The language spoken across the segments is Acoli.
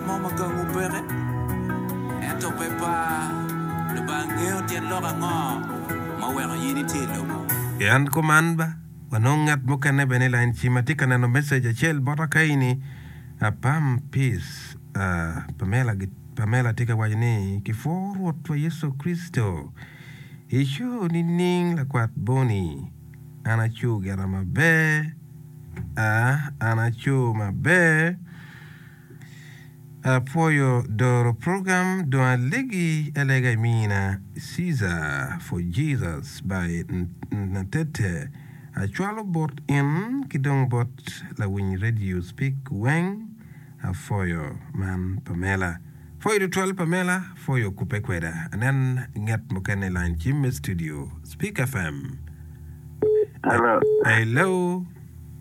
Mo ma gangu peke, ento pe par. Lubanga ngeyo tyen lok ango ma oweko in itye i lobo. I and kuman ba wanong ngat mukene bene i lain ci ma tye ka neno message acel bota kayi ni apam peace ahh Pamela gi Pamela tye ka waco ni ki pwoo Rwot wa Yecu Kricito I show nining lakwat Bonny an acu gera maber ahh an acu maber. Apwoyo doro program dong alegi alega i mina Caesar for Jesus by Natete acwalo bot in ki dong bot lawiny radio speak weng apwoyo man Pamela apwoyo tutwal Pamela apwoyo kupe kweda anen nget mukene i line ci me studio Speak FM Hello. Hello.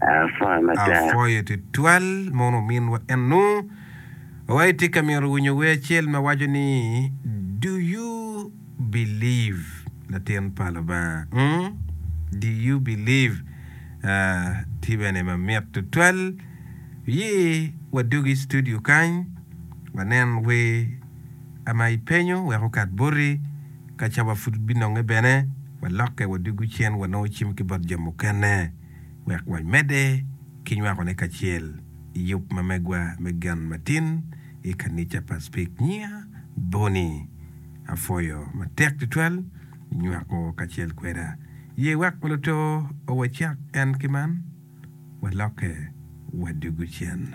Apwoyo tutwal mono ominwa eno wa itye ka myero winyo wer acel ma waco ni do you believe latin pa lubanga mm do you believe tye bene ma mit tutwal oye wa dog i studio kany wa nen wer ama i penyo wek okat boti kaca wa pud bi nonge bene wa loke wa dugu cen wa nongo cim ki bot jo mukene. wek wamedde ki nywakone kacel i yub ma megwa me gen matin i kanica pa Speke. Nyinga Bonnie. Apwoyo matek tutwal nywako kacel kweda. Ye wek luto wacak en ki man, walokke wadugu cen.